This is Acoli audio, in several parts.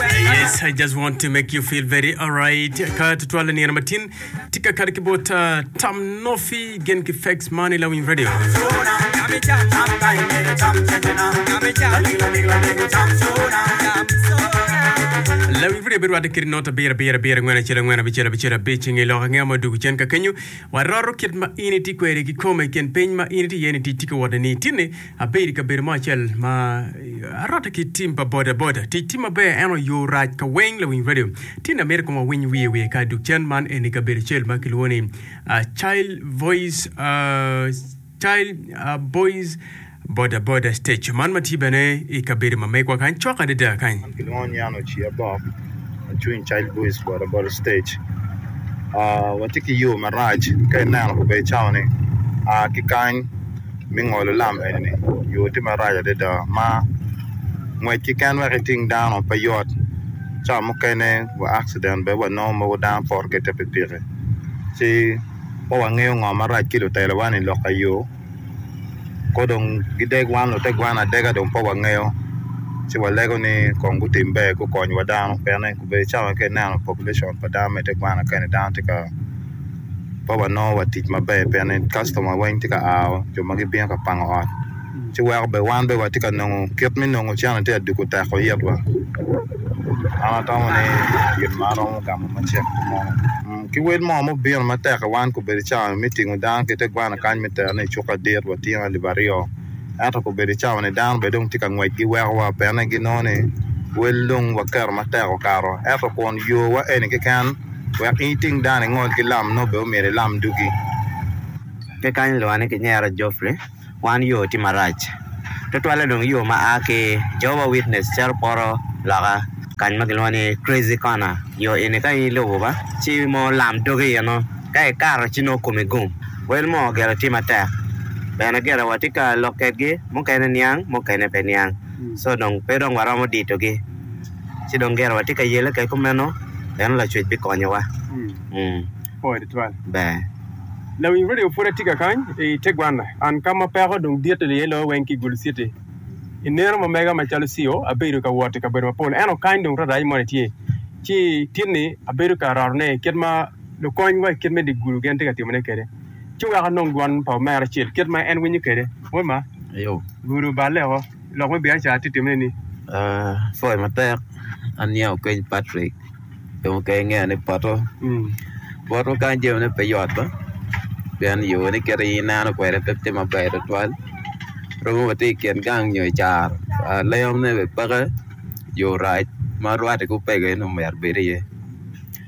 Yes, I just want to make you feel very alright. Ka tutwal la niyena matin, tika kare ki bot uh, Tam Nofi gen ki Fax Money la Wing Radio. La Wing Radio bedo wate kiri nota bira bira bira ngwen acel ngwen abicel abicel abic ngi loka ngi amo dugu cen ka kenyo. Waroro kit ma ini ti kweri ki kome ken piny ma ini ti yeni ti tika wate ni tini Abedo i kabedo mo acel ma arotte ki tim pa bodaboda. Tic tye maber ento yo rac ka weng lawiny radio. Tinne amito kong awiny wiye wiye ka duk cen man eni kabedo acel ma kilwongo ni Child Voice Child Voice Bodaboda Stage man ma tye bene i kabedo ma megwa kany cok adada kany. Man kilwongo ni an Oci Abok acung i Child Voice Bodaboda Stage. Watye ki yo marac ka ineno kabedo cawa ni a ki kany. me ngolo lam eni yo tye marac adada ma ngwec keken wek iting dano pe yot ca mukene wa akciden bene wanongo mogo dano poto ki i te pikipiki ci pe wangeyo ngo marac ki lutelowa ni lok i yo kong dong gideg wan lutegwana adega dong pe wangeyo ci walego ni kong gutim ber gukony wa dano pien ni obedo cawa ka ineno population pa dano me tegwana kene dano tye ka pe wanongo wa tic maber pien kastoma weng tye ka a jo ma gibino ka pango ot ci weko bene wan watye ka nongo kit me nongo cene tye ka dwogo teko itwa an atamo ni gin man romo gamo macek mo ki wel mo ma obino matek i wan obedo cawa ni me tingo dano ki te gwana kany me tero ne i cuk adit watye alip aryo ento obedo cawa ni dano bene dong tye ka ngwec ki weko wa pien ni ginongo ni wel dong waketo matek okato ento kun yo wa eni keken wek in iting dano ingol ki lam nongo bene omyero ilam dugi. Pe kany ilwonga ni kinyera Geoffrey, wan yoo tye marac tutwalle dong yoo ma aa ki Jehovah Witness cito poto loka kany ma kilwongo ni Crazy Corner. Yoo eni ka in ilubo ba ci mo lam dogi iye nongo ka ikato ci nongo komi gum. Wel mo gire tye matek bene gire watye ka lok kedgi mukene niang mukene pe niang so dong pe dong waromo ditogi. ci dong gire watye ka yele kek kumeno en Lacwec bikonyowa. Ber. Lawiny radio pud atika kany i tegwanna and ka ma peko dong dit aye loyo weng ki Gulu city i neno ma mega ma calo Ceo abedo ka wot i kabedo ma pol eno kany dong rarac moni tye ci tit ni abedo ka roto ne kit ma lukony wa i kit me di Gulu gen tye ka timo ne kede ci weko anong dwon pa omera acel kit ma en winyo kede. Wod ma. Ayo. Gulu balle o. lok me biacara tye timone ni. Coyo matek aniang okeny Patrick dong oke ingeya ni poto bot ma kany jamine pe yot ba pien yoo ne kit aye ineno kwede pe tye maber tutwal romo wa tye i kin gang nyo i caro lengo ne bene peke yoo rac ma rwate ki opeke en omyero obed iye.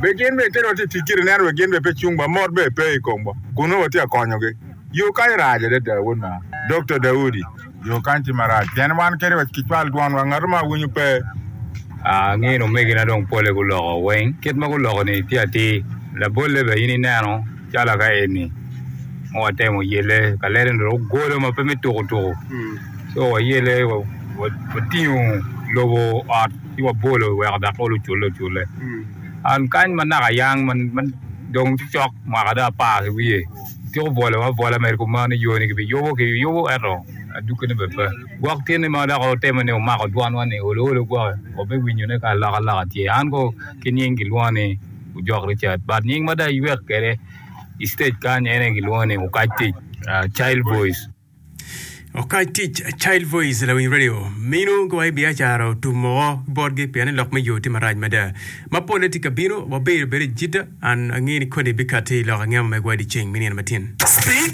Be gin bene kit ma watye ka tic kwede neno wek gin bene pe cungwa? Mot bene pe i komwa kun nongo watye ka konyogi. Yo kany rac adada, wod mama. Dokta Daudi, Yo kany tye marac pien wan kadi wa kicwal dwonwa, ngatu mo awinyo pe. Angin omegina dong pole guloko weng kit ma guloko-ni tye atir. Labolle bene in ineno calo ka eni ma watemo yelle ka lele-ni dong ogolo ma pe me tuku tuku. Co wayelle, watingo lobo ot. ci wabolo iweko dok olo ocule ocule. An kany ma naka ayang ma dong tye cok mwaka dong apar ki wiye, atyeko bolo abola mere kuman ni yoni kibiyubo kiyubo ento adukkine bene pe. Gwok tyene ma dok otimo ni omako dwanwa ni olo olo gwoki wabiwinyone ka alok aloka tye. An ko ki nying gilwonga ni Ojok Richard but nying ma dong aywek kwede i stage kany en aye gilwonga ni Okac Tic, Child Voice. Okany tic Child Voice lawiny radio mino gowa i biacara otum moko botgi pien ni lok me yo tye marac mada. Ma polle tye ka bino, wabedo bedo i Jidda, an angeyo ni koni bikatti i lok angemo megwa i dyeceng me nino matin.